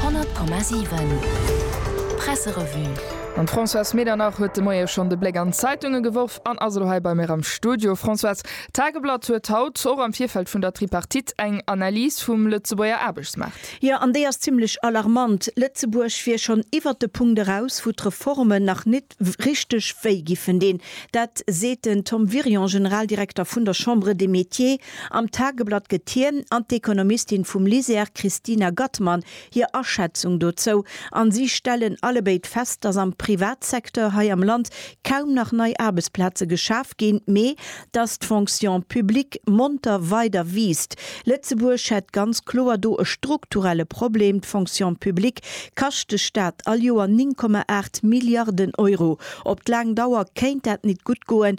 100,7 Presserevue Mam Françoise Medernach huet de Moie schonn de Bléck an d'Zeitunge geworf an ass elo hei bei mir am Studio. Françoise, d'Tageblatt huet haut, och am Virfeld vun der Tripartite, eng Analys vum Lëtzebuerger Aarbechtsmaart. Jo, an déi ass zimmlech alarmant. Lëtzebuerg wier schonn iwwert de Punkt eraus, wou d'Reformen nach nit richteg wéi giffen dinn. Dat seet den Tom Wirion, Generaldirekter vun der Chambre des Métiers. Am Tageblatt gëtt hien an d'Ekonomistin vum LISER Christina Gattmann hir Aschätzung dozou, an si stellen allebéid fest, datt am Privatsecteur hei am Land kaum nach nei Aarbechtsplaze geschaf ginn, mee datt d'Fonction publique monter weider wiisst. Lëtzebuerg hätt ganz kloer do e strukturelle Problem, d'Fonction publique kascht de Staat all Joer 9,8 Milliarden Euro. Op d'laang Dauer kéint dat nit gutt goen.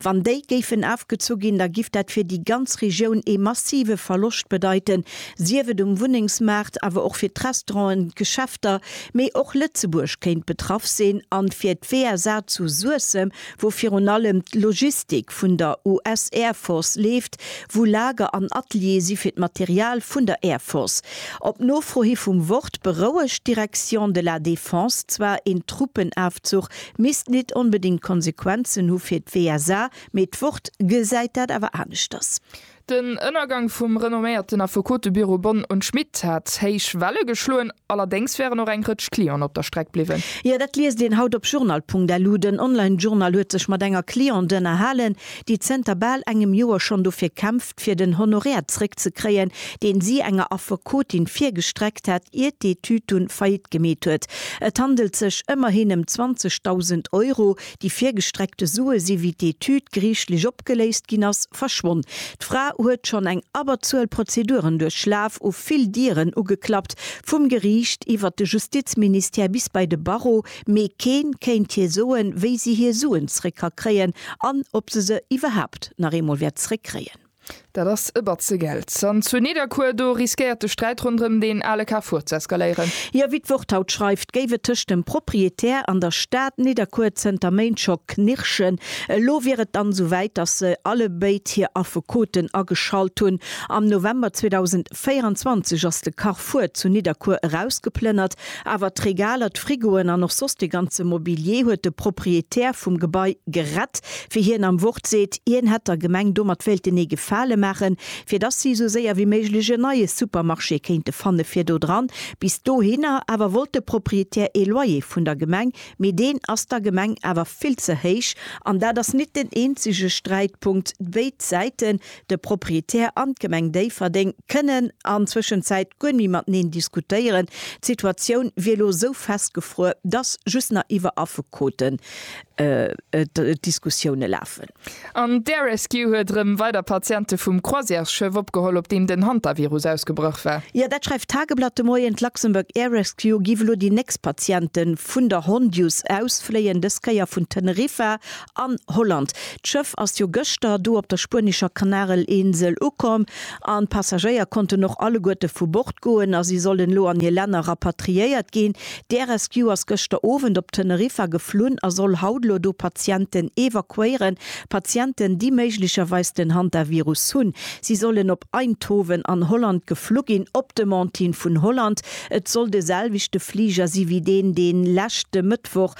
Wann déi géifen afgezu ginn, da giff dat fir déi ganz Regioun ee massive Verloscht bedeiten, sief et um Wunnengsmaart, awer och fir d'Restauranten, d'Geschäfter, mee och Lëtzebuerg kéint betraff sinn, a fir d'WSA zu Suessem, wou virun allem d'Logistik vun der US Air Force leeft, wou Lager an Ateliere si fir d'Material vun der Air Force. Op Nofro hi vum Wort berouegt d'Direction de la Défense zwar een Truppenafzuch misst nit onbedingt Konsequenzen hu fir d'WSA, mee d'Wort gesäit dat awer aneschters. Den Ënnergang vum renomméierten Affekotebüro Bonn und Schmidt hat héich Welle geschloen, allerdéngs wären och eng Rëtsch Clienten op der Streck bliwwen. Jo, dat liest een haut op journal.lu. Den Online-Journal huet sech mat enger Cliente ënnerhalen, déi zënter bal engem Joer schonn dofir kämpft, fir den Honoraire zréckzekréien, deen si enger Affekotin virgestreckt hat, iert d'Etüd dunn Faillite gemeet huet. Et handelt sech ëmmerhin ëm 20.000 Euro. Déi virgestreckte Sue si, wéi d'Etüd geriichtlech opgeléist ginn ass, verschwonn. D'Fra huet schonn eng Abberzuel Prozeduren duerchlaf, u vill Dieren ugeklappt, vum Geriicht iwwert de Justizministère bis bei de Barreau. mee keen kéint hir soen, wéi si hir Suen zréck ka kréien an ob se se iwwerhaapt nach eemol wäert zréck kréien. Dat ass e Batze Geld. An zu Nidderkuer, do riskéiert de Sträit ronderëm deen ale Carrefour z'eskaléieren. Jo, wéi d'Wort haut schreift, géif et tëscht dem Propriétaire an der Stad Nidderkuer zënter Méint scho knirschen. Elo wier et dann esou wäit, datt se allebéid hir Affekoten ageschalt hunn. Am November 2000. 24 ass de Carrefour zu Nidderkuer erausgeplënnert, awer d'Regaler, d'Frigoen an och soss de ganze Mobilier huet de Proprietär vum Gebai gerett, wéi hien am Wort seet. Hien hätt der Gemeng domat wéilten ee Gefale maachen, fir dass si esou séier wéi méiglech en neie Supermarché kéinte fanne fir do dran. Bis dohinner awer wollt de Proprietär ee Loyer vun der Gemeng, mee deen ass der Gemeng awer vill ze héich. An dat ass nit den eenzege Sträitpunkt. Béid Säite De Proprietär an d'Gemeng Déifferdeng kënnen an Zwëschenzäit guer méi mateneen diskutéieren. D'Situatioun wier elo esou festgefruer, dass just nach iwwer Affekoten d'Diskussioune lafen. An d'Air Rescue huet erëm weider Patiente vum Croisièresschëff opgeholl, op deem den Hantavirus ausgebrach war. Jo, dat schreift d'Tageblatt de Moien. D'Luxembourg Air Rescue giff elo déi nächst Patiente vun der Hondius ausfléien, dës Kéier vun Teneriffa An Holland. D'Schëff ass jo gëschter do op der spuenescher Kanarelinsel ukomm an d'Passagéier konnten och alleguerte vu Bord goen a si sollen elo an hir Länner rapatriéiert ginn. D'Air Rescue ass gëschter Owend op Teneriffa geflunn a soll haut elo do Patienten evakuéieren. Patienten, déi méiglecherweis den Hantavirus hunn. Si sollen op Eindhoven an Holland geflu ginn, op Demande hin vun Holland. Et soll de selwechte Fliger si wéi deen, dee leschte Mëttwoch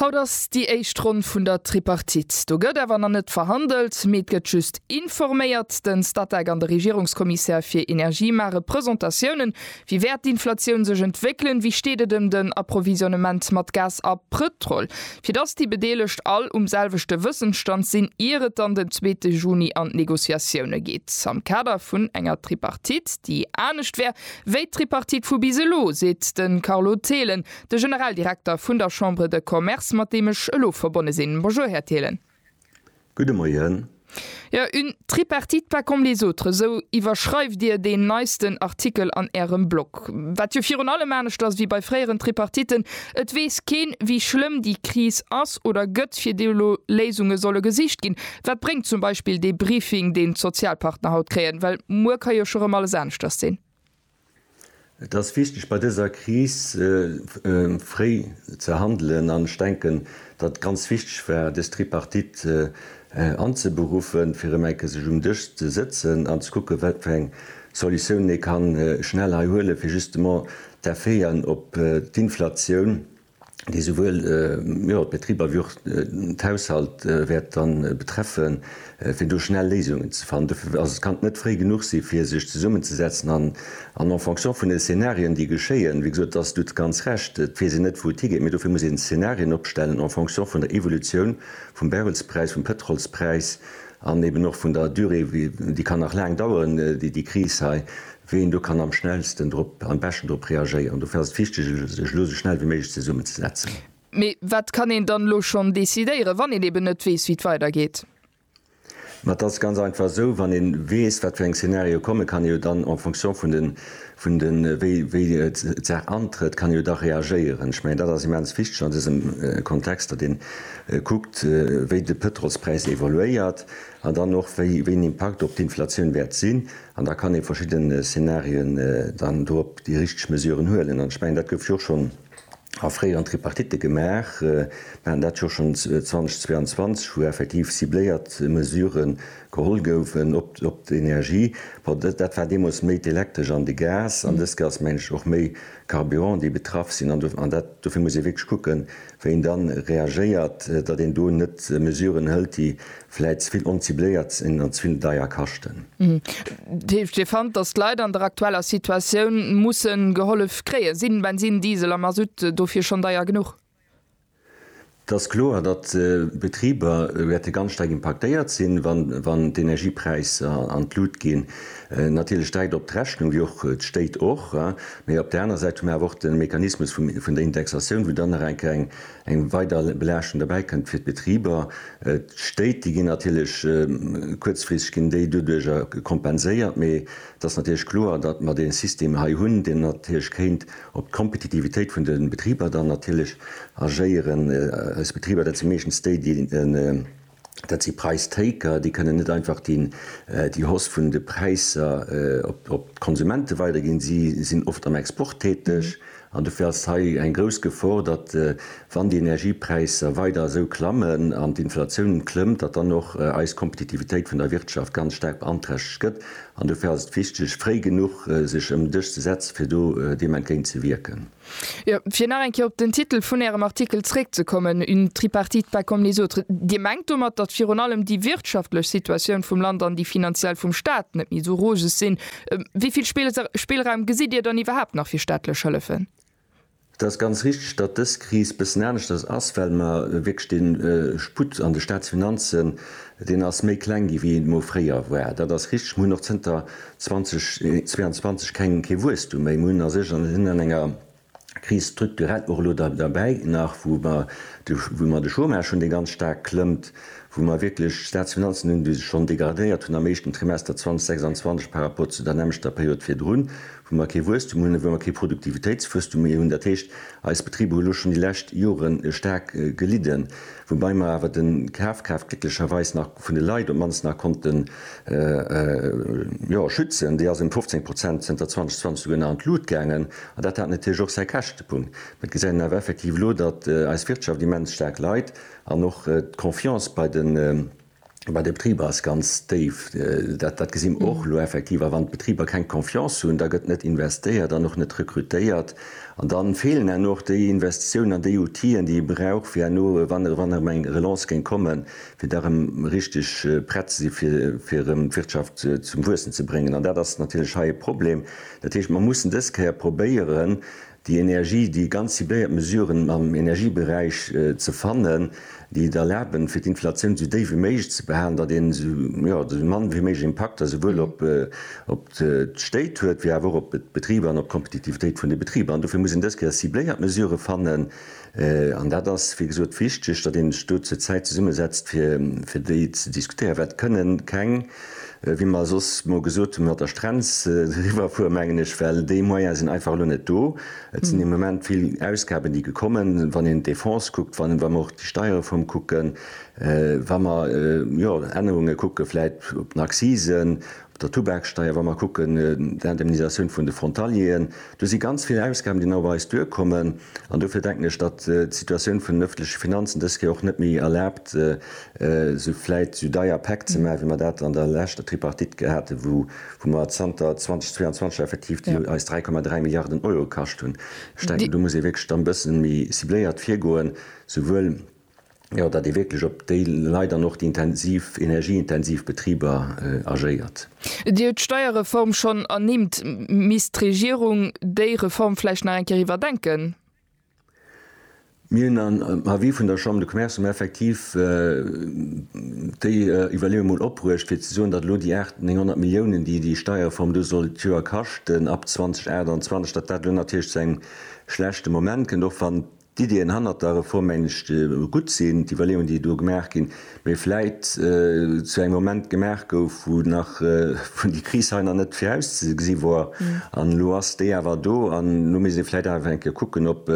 Haut ass déi éischt Ronn vun der Tripartite. Do gëtt awer nach net verhandelt, mee et gëtt just informéiert. Den Statec an de Regierungskommissär fir Energie maache Presentatiounen. Wéi wäert d'Inflatioun sech entwéckelen? Wéi steet et ëm den Approvisionnement mat Gas a Pëtrol? Fir dass déi Bedeelegt all um selwechte Wëssensstand sinn, ier et dann den zweete Juni an d'Negociatioune geet am Kader vun enger Tripartite, déi anescht wär wéi d'Tripartite vu bis elo, seet de Carlo Thelen. De Generaldirekter vun der Chambre de Commerce, mat deem ech elo verbonne sinn. Bonjour, Här Thelen. Gudde Moien. Jo, une tripartite pas comme les autres, esou iwwerschreift Dir deen neisten Artikel an Ärem Blog. Wat jo virun allem anescht ass wéi bei fréieren Tripartiten, et weess keen, wéi schlëmm déi Kris ass oder gëtt, fir déi elo Léisunge solle gesicht ginn. Wat bréngt zum Beispill dee Briefing, deen d'Sozialpartner haut kréien? Well muer ka jo scho rëm alles aneschters sinn. Et ass wichteg bei dëser Kris fréi ze handelen an ech denken, datt et ganz wichteg war dës Tripartite anzeberuffen, fir erëm eng Kéier sech um Dësch ze sëtzen an ze kucken, wat fir eng Solutiounen ee ka schnell hei huelen, fir justement d'Effeten op d'Inflatioun, déi souwuel d'Betriber wéi och d'Haushalt wäert betreffen, fir do schnell Léisungen ze fannen. Dofir ass et kann net fréi genuch sinn, fir sech zesummenzesetzen an en fonction vun de Szenarien, déi geschéien, wéi gesot, do hues de ganz Recht, et weess een net, wou et higeet, mee dofir muss een Szenarien opstellen en fonction vun der Evolutioun vum Barrelspräis, vum Pëtrolspräis an eeben och vun der Durée, déi kann nach laang daueren, déi Kris hei. wéi een do kann am schnellsten drop, am beschten drop reagéieren. Dofir ass et wichteg, sech elo esou schnell wéi méiglech zesummenzesetzen. Mee wat kann een dann elo schonn decidéieren, wann een eben net weess, wéi et weidergeet? Ma et ass ganz einfach esou, wann ee weess, wat fir eng Szenarioe kommen, kann ee jo dann en fonction vun den, vun den, wéi, wéi d'Saach antrëtt, kann ee jo da reagéieren. Ech mengen, dat ass immens wichteg an dësem Kontext, datt ee kuckt, wéi de Pëtrolspräis evoluéiert an dann och, wéi, wéi en Impakt op d'Inflatioun wäert sinn. An da kann ee verschidden Szenarien dann dorop déi richteg Mesuren huelen. An ech mengen, dat gouf jo schonn a fréieren Tripartite gemaach. Mir haten dat jo schonn 2022, wou effektiv cibléiert Mesure geholl goufen op d'Energie. Bon, dat war deemools méi d'Elektresch an de Gas. An dës Kéier ass, mengen ech, och méi Carburant, déi betraff sinn. An dofir muss ee wierklech kucken, Wéi een dann reagéiert, datt een do net Mesuren hëlt, déi vläit ze vill oncibléiert sinn an ze vill deier kaschten. Dat heescht, Dir fannt, datt d'Leit an der aktueller Situatioun musse gehollef kréien? Sinn Bensin, Diesel a Masutt dofir schonn deier genuch? Et ass kloer, datt d'Betriber wäerte ganz staark impaktéiert sinn, wann d'Energiepräisser an d'Lut ginn. Natierlech dreckt op d'Rechnung, wéi och d'Stéit och. Mee op där aner Säit hu mer awer och de Mechanismus vun der Indexatioun, wou dann nach eng Kéier eng weider Belaaschtung derbäi kënnt fir d'Betriber. D'Stéit, déi ginn natierlech kuerzfristeg ginn déi doduerch kompenséiert. Mee et ass natierlech kloer, datt mer dee System hei hunn, deen natierlech kéint op d'Kompetitivitéit vun de Betriber dann natierlech agéieren. Eis Betriber, dat si meeschtens déi, déi en. Dat si Präistaker, déi kënnen net einfach déi Hausse vun de Präisser op d'Konsumente weiderginn. Si sinn oft am Export täteg an dofir ass hei eng grouss Gefor, datt wann déi Energiepräisser weider esou klammen an d'Inflatioun klëmmt, datt dann och eis Kompetitivitéit vun der Wirtschaft ganz staark beanträchtegt gëtt. An dofir ass et wichteg, fréi genuch sech ëm den Dësch ze setzen, fir do deem entgéint ze wierken. Jo, fir nach eng Kéier op den Titel vun Ärem Artikel zréckzekommen, Une tripartite pas comme les autres. Dir mengt domat, datt virun allem déi wirtschaftlech Situatioun vum Land an déi finanziell vum Staat net méi esou roseg sinn. Wéi vill Spillraum gesitt Dir dann iwwerhaapt nach fir staatlech Hëllefen? Et ass ganz richteg, datt dës Kris bëssen aneschters ass, well mer wierklech dee Sputt an de Staatsfinanzen Deen ass méi kleng gi wéi een emol fréier war. Dat ass richteg. Mir hunn och zënter 2022 keng, kee Wuesstum méi. Mir hunn a sech, sinn an enger Kris strukturell och elo derbäi nach, wou mer de, wou mer de Chômage hunn, dee ganz staark klëmmt, wou mer wierklech Staatsfinanzen hunn, déi sech schonn degradéiert hunn am éischten Trimester 2026 par rapport zu der nämmlechter Period virdrun, wou mer kee Wuesstum hunn, wou mer kee Produktivitéitswuesstum méi hunn, dat heescht, eis Betriber hu lo schonn déi lescht Jore staark gelidden, woubäi mer awer de Kafkraaft glécklecherweis nach vun de Leit op d'mannst nach konnte, jo, schützen. Déi ass ëm 15 Prozent zënter 2020 souguer nach an d'Lut gaangen an dat hat natierlech och säi Käschtepunkt. Mä et gesäit een awer effektiv elo, datt eis Wirtschaft immens staark leit an och d'Confiance bei de. Bei de Betriber ass ganz déif. Dat gesi mer och elo effektiv. A wann d'Betriber keng Confiance hunn, da gëtt net investéiert an och net rekrutéiert. An da feelen herno och déi Investitiounen an déi Outile, déi ee brauch, fir herno, wann erëm eng Relance géing kommen, fir da erëm richteg prett ze si fir erëm d'Wirtschaft zum Wuessen ze bréngen. An dat ass natierlech hei e Problem. Dat heescht, mer mussen dës Kéier probéieren, Déi Energie, déi ganz cibléiert Mesuren am Energieberäich ze fannen, déi et erlaben, fir d'Inflatioun esou déif wéi méiglech ze behalen, datt een esou mann wéi méiglech Impakter souwuel op d'Stéit huet wéi awer och op d'Betriber an op d'Kompetitivitéit vun de Betriber. An dofir muss een dës Kéier cibléiert Mesurë fannen, An dat ass, wéi gesot, wichteg, datt ee sech do zur Zäit zesummesetzt, fir déi ze diskutéieren, well et kënne keng, wéi mer soss mol gesot hunn, mat der Strenz eriwwerfueren, mengen ech, well déi Moyene sinn einfach elo net do. Et sinn de Moment vill Ausgaben, déi gekommen, wann een d'Defense kuckt, wa mer och déi Steierreform kucken, wa mer, jo, Ännerunge kucke vläicht op den Accisen der Tubaksteier, wa mer kucken d'Indemnisatioun vun de Frontalieren, do si ganz vill Ausgaben, déi nach op eis duerkommen. An dofir denken ech, datt d'Situatioun vun den öffentleche Finanzen dës Kéier och net méi erlaabt, esou vläit esou deier Päck ze maachen, wéi mer dat an der leschter Tripartite gehat hu, wou mer zanter 2022 effektiv, déi eis 3,3 Milliarden Euro kascht hunn. Ech denken, do muss ee wierklech da e bësse méi cibléiert virgoen, souwuel, jo, datt ee wierklech op déi Leit an och déi intensiv, energieintensiv Betriber agéiert. Dir hutt d'Steierreform schonn ernimmt. Misst d'Regierung déi Reform vläicht nach eng Kéier iwwerdenken? Mir hunn am Avis vun der Chambre de Commerce emol effektiv déi Iwwerleeung emol opbruecht, fir ze soen, datt elo déi 800, 900 Milliounen, déi déi Steierreform do soll d'Joer kaschten ab 2028, datt dat elo natierlech zu engem schlechte Moment kënnt, och wann D'Iddien hannert der Reform mengen ech gutt sinn, d'Iwwerleeungen déi do gemaach ginn, mee vläit zu engem Moment gemaach gouf wou nach wou déi Kris hei nach net virauszegesi wor an elo ass déi awer do an elo misst ee vläit awer eng Kéier kucken op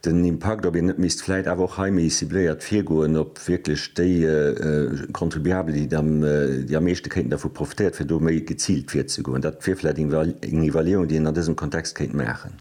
den Impakt, ob een net misst vläit awer och hei méi cibléiert virgoen op wierklech déi Contribuabel déi da déi am meeschte kéinten dervu profitéiert fir do méi geziilt virzegoen. Dat wier vläit eng Iwwerleeung déi een an dësem Kontext kéint maachen.